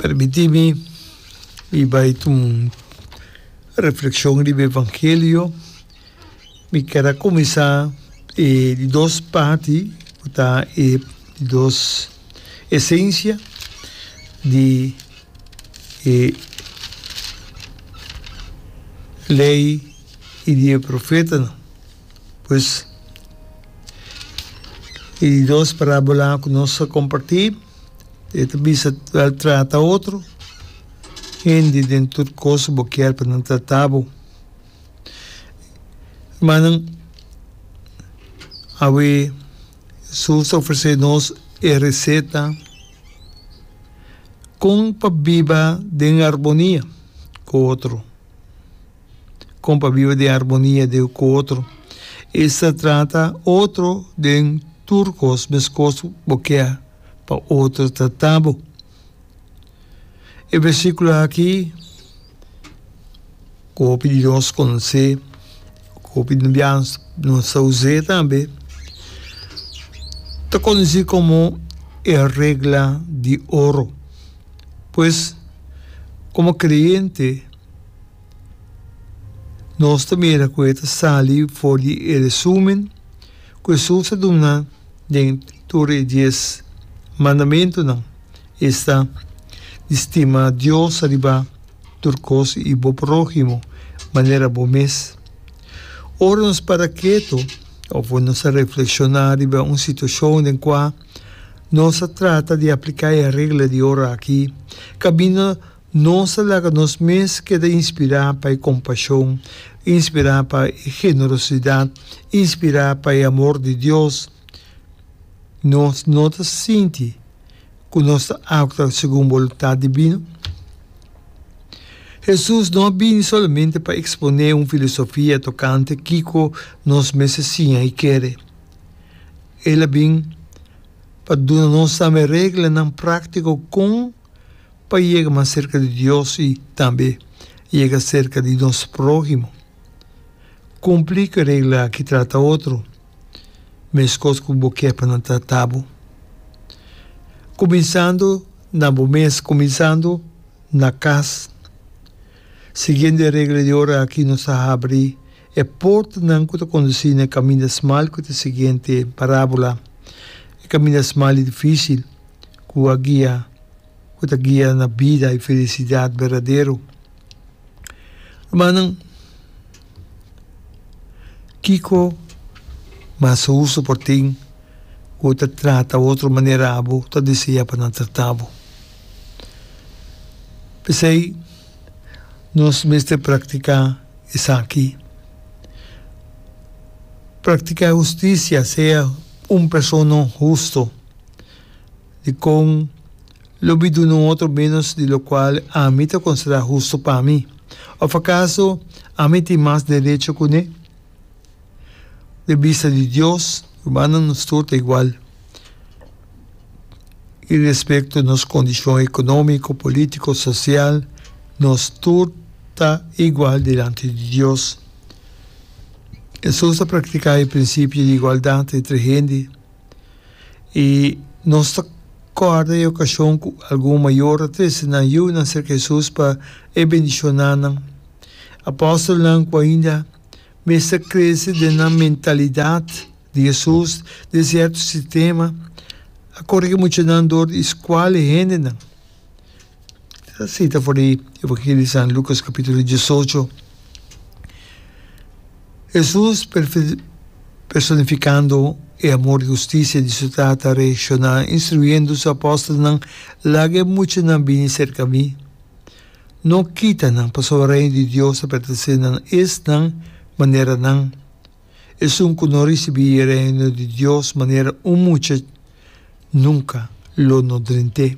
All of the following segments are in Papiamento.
Permiti mi mi bai ta un reflekshon riba evangelio mi ker a kuminsá e di dos parti ku ta e dos esensia di e lei i di e profetanan. Pues, e dos parabolanan cu nos a comparti, e ta bisa wel trata otro hende den tur cos bo kier pa nan trata bo. Hermannan, awe Jesus ta ofrece nos e receta con pa biba den armonia cu otro. kon pa biba den armonia den ku otro. Esta trata otro den tur kos meskos bo ke pa otro trata bo. E versíkulo aki ku hopi di nos konosé, ku hopi di bia nos ta us'é tambe, ta konosí komo e regla di oro. Pues, komo kreyente. Nos ta mira cu e ta sali for di e resumen cu Jesús a duna den tur e dies mandamentonan, esta, Di stima Dios riba tur cos y bo próhimo manera bo mes. Ora nos para keto of nos a reflexiona riba un situacion den cua nos a trata di aplica e regla di ora aki, caminda Nos ta laga nos mes keda inspirá pa e kompashon, inspirá pa e generosidat, inspirá pa e amor di Dios. Nos no ta sinti ku nos ta aktua segun boluntat dibino? Hesus no a bini solamente pa eksponé un filosofia tokante kiko nos mester siña i kere. El a bin pa duna nos tambe reglanan práktiko kon pa yega mas serka di Dios i tambe yega serka di nos próhimo. Kumpli ku e regla aki, Trata otro meskos ku bo ke pa nan trata bo. Kuminsando na bo mes, kuminsando na kas. Siguiendo e regla di ora aki nos a habri e portanan ku ta kondusí na e kaminda smal ku ta siguiente parábola, e kaminda smal i difísil. ku a guia, ku ta guia na bida i felisidat berdadero. Rumannan, kiko mas hustu por tin ku ta trata otro manera abo ta deseá pa nan trata bo? P'esei nos mester praktiká esaki. Praktiká hustisia, sea un persona hustu. di kon lo bi duna un otro ménos di lokual ami ta konsiderá hustu pa mi? Òf akaso ami tin mas derecho kuné? Den bista di Dios, rumannan nos tur ta igual i respekto nos kondishon ekonómiko, polítiko, sosial, nos tur ta igual dilanti di Dios. Hesus a praktiká e prinsipio di igualdat entre hende. I nos ta kòrda e okashon ku algun mayor a trese nan yu nan serka Hesus pa E bendishoná nan. Apòstelnan ku ainda mester krese den nan mentalidat di Hesus den sierto sistema a korigi muchanan dor di skual e hendenan. E sita for di Evangelio di San Lucas capitulo diesocho. Jesus personificando e amor y husticia di su Tata reacciona instruyendo su apostolnan, Laga e muchanan bini cerca mi. No kita nan, pasobra Reino di Dios a pertense na esnan manera nan. Esun cu no ricibi e Reino di Dios manera un mucha, Nunca lo no drint'é.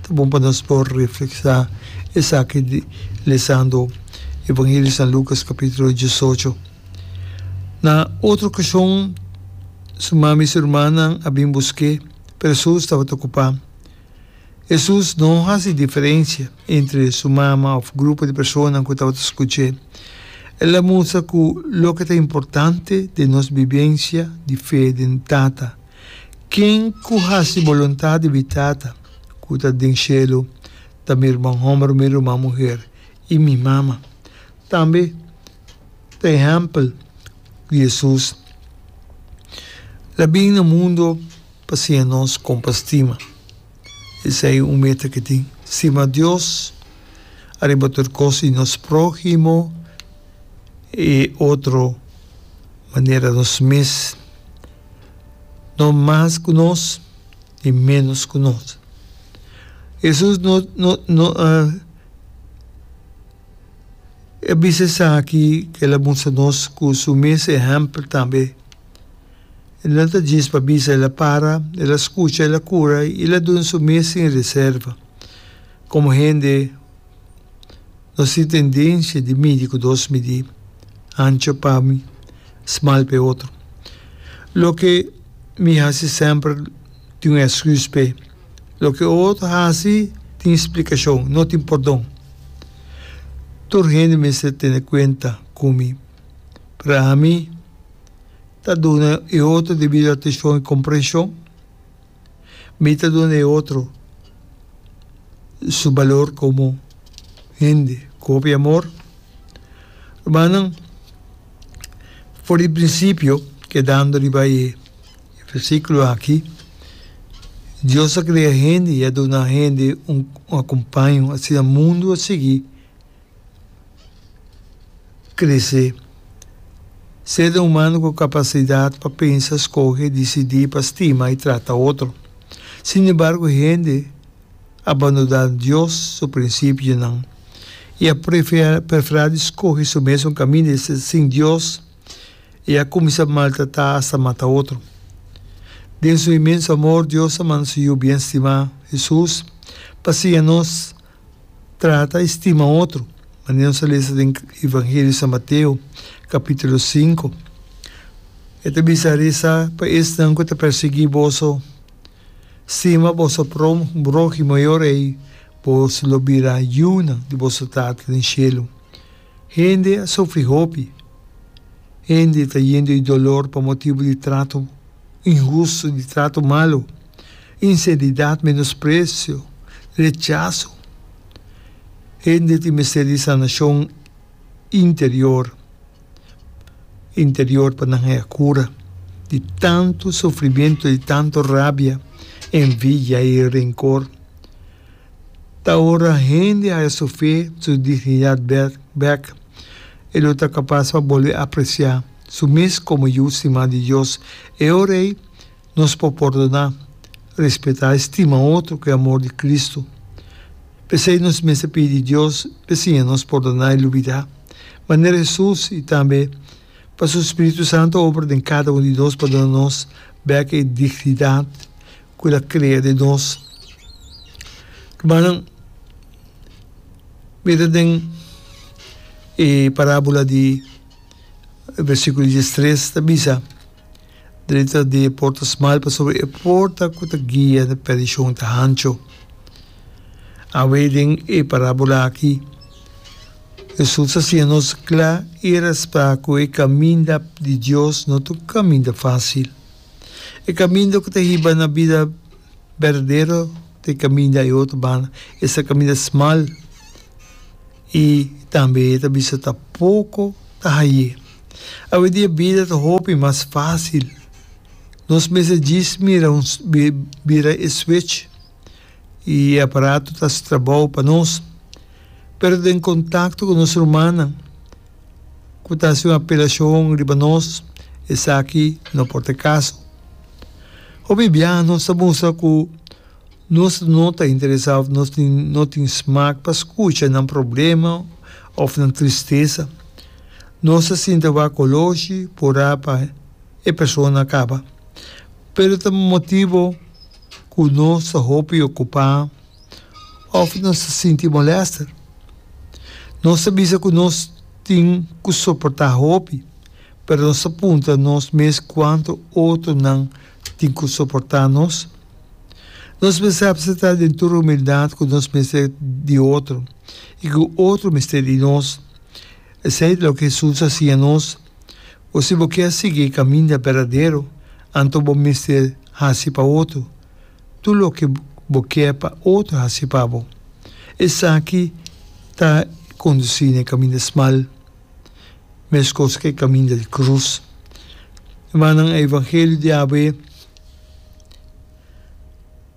Ta bon pa nos por reflexá esaki lesando Evangelio di San Lucas capítulo diesocho. Na otro ocasion su mami i su hermannan a bin busk'é, pero su tabata ocupá. Hesus no hasi diferensia entre su mama òf grupo di personanan ku tabata skuch'é. El a mustra ku loke ta importante den nos bibensia di fe den Tata. Ken ku hasi boluntat di bi Tata ku ta den shelu ta mi ruman hòmber, mi ruman muher i mi mama. Tambe ta ehèmpel di Hesus la bin na mundu. Pasia nos compa stima. Esey un meta ki tin. Stima Dios ariba tur cos y nos prohimo e otro manera nos mes. No mas cu nos ni menos cu nos. Jesus no no a a bisa esaki cu el a musta nos cu su mes ehempel tambe. El no ta djis pa bisa, el a para, el a scucha, el a cura y el a dun su mes sin reserva. Como hende, nos tin tendencia di midi cu dos midi, ancho pa mi, smal p'e otro. Loke mi haci semper tin un excus p'e, loke e otro haci tin explicacion, no tin pordon. Tur hende mester tene cuenta cu mi, pero ami, Ta duna e otro debido atenshon i komprenshon. Mi ta duna e otro su balor komo hende ku hopi amor. Rumannan, for di prinsipio, kedando riba e versíkulo aki, Dios a krea hende i a duna hende un akompaño asina mundu a sigui. Krese. Ser humano cu capacidad pa pensa, scoge, dicidi pa stima y trata otro. Sin embargo hende a bandona Dios su principionan y a prefera di scoge su mesun camin di ser sin Dios y a cuminsa maltrata hasta mata otro. Den su inmenso amor Dios a manda su Yu bien stima, Jesus, pa siña nos. Trata i stima otro. Manera nos a lesa den Evangelio di San Mateo, capitulo sinku, e ta bisa, Resa pa esnan ku ta persiguí boso, stima boso próhimo i ora ei boso lo bira yunan di boso Tata den shelu. Hende a sufri hopi. Hende ta yendo di dolor pa motibu di trato inhustu, di trato malu. Inseridat, menospresio, rechaso. Hende tin mester di sanashon interior, interior pa nan haya kura di tantu sufrimiento, di tantu rabia, envidia i renkor. Ta ora hende haya su fe, su dignidat bèk bèk, e lo ta kapas pa bolbe apresiá su mes komo Yu stimá di Dios. E ora ei. Nos por pòrdoná, respetá i stima otro ku e amor di Kristu. P'esei nos mester pidi di Dios p'e siña nos pòrdoná i lubidá, manera Hesus, i tambe pa su spiritu santu obra den kada un di nos pa duna nos bèk e dignidat ku el a krea den nos. Rumannan, mira den e parábula di e bersíkulo diestres, ta bisa, Drenta di e porta smal, pasobra e porta ku ta guia na perdishon ta hancho. Awe den e parábola akí, Hesus a siña nos kla i raspá ku e kaminda di Dios no ta un kaminda fásil. E kaminda ku ta hiba na bida berdadero ta e kaminda e otro banda, esta kaminda smal. I tambe e ta bisa ta poko ta haye. Awedia bida ta hopi mas fásil. Nos mes a djis mira un bira e switch i e aparato ta hasi trabou pa nos. Pero den kontakto ku nos rumannan ku ta hasi un apelashon riba nos, esaki no por ta e kaso. Hopi biaha nos ta bunsa ku. Nos no ta interesá òf nos no tin smak pa skucha nan problema òf nan tristesa. Nos ta sinti awor koloshi pa orá pa e persona kaba. Pero ta motibu ku nos ta hopi okupá òf nos ta sinti molèster. Nos ta bisa ku nos tin ku soportá hopi, pero nos ta punta nos mes kuantu otronan. tin ku soportá nos. Nos mester apseptá den tur humildat ku nos mester di otro i ku otro mester di nos. Esei ta loke Hesus a siña nos, Bo si bo kier sigui e kaminda berdadero, anto bo mester hasi pa otro tur loke bo kier pa otro hasi pa bo. Esaki ta kondusí na e kaminda smal. Mescos cu e caminda di cruz. Hermananan, e evangelio di Yahweh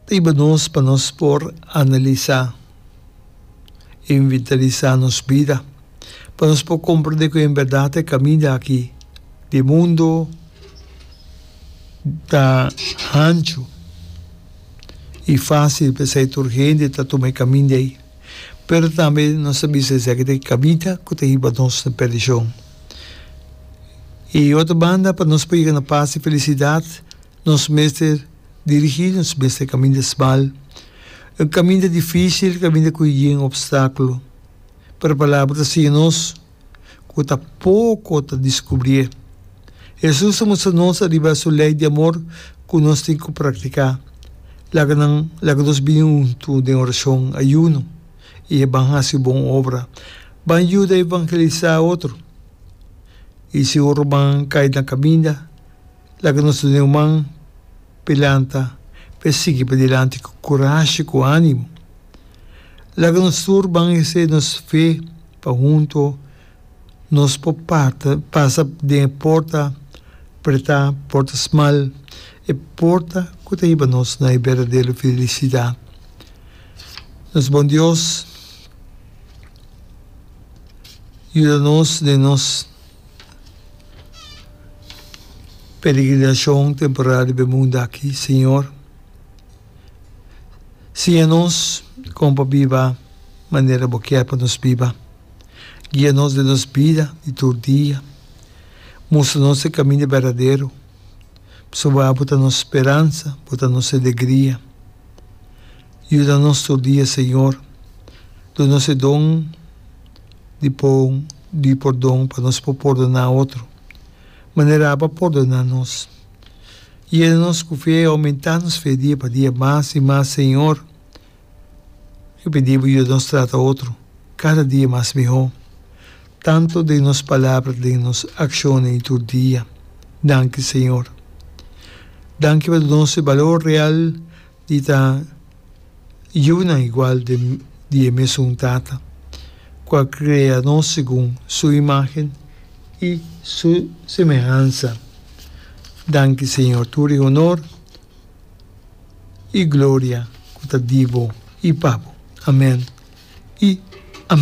ta iba nos pa nos por analisa e inventarisa nos bida, pa nos por comprende cu en berdad e caminda aki di e mundo ta hancho y facil, p'esey tur hende ta tuma e caminda ey. Pero tambe nos ta bisa esaki ta e kabita ku ta hiba nos na perdishon. I otro banda, pa nos por yega na pas i felisidat, nos mester dirigí, nos mester kaminda smal. E un kaminda difísil, e un kaminda ku yin opstákulo. Pero Palabra ta siña nos ku ta poko ta diskubrié. Hesus a mustra nos ariba su lei di amor ku nos tin ku praktiká. Laga nan laga nos bini huntu den orashon, ayuno, i e ban hasi bon obra. Ban yuda evangelisá otro. I si otro ban kai na kaminda, laga nos duna e un man pa e lanta pa e sigui padilanti ku kurashi, ku ánimo. Laga nos tur ban hesé nos fe. Pa hunto nos por pata, pasa den e porta pretá, porta smal, e porta ku ta hiba nos na e berdadero felisidat. Nos Bon Dios yuda nos den nos peregrinashon temporal riba e mundu aki, Señor. Siña nos kon pa biba manera Bo kier pa nos biba. Guia nos den nos bida di tur dia. Mustra nos e kaminda berdadero, pasobra Bo ta nos speransa, Bo ta nos alegria. Yuda nos tur dia, Señor. Duna nos e don di pon di pordon pa nos por pordoná otro, manera Aba pordona nos. Yena nos ku fe, oumentá nos fe dia pa dia mas i mas, Señor. Yo pidi Bo yuda nos trata otro kada dia mas mihó, tantu den nos palabra den nos akshonnan i tur dia. Danki, Señor. Danki pa duna nos e balor real. I ta yunan igual di e mesun Tata, ku a krea nos segun su imágen i su semehansa. Danki, Señor, tur e honor i gloria ku ta di bo i pa bo. Amèn i amèn.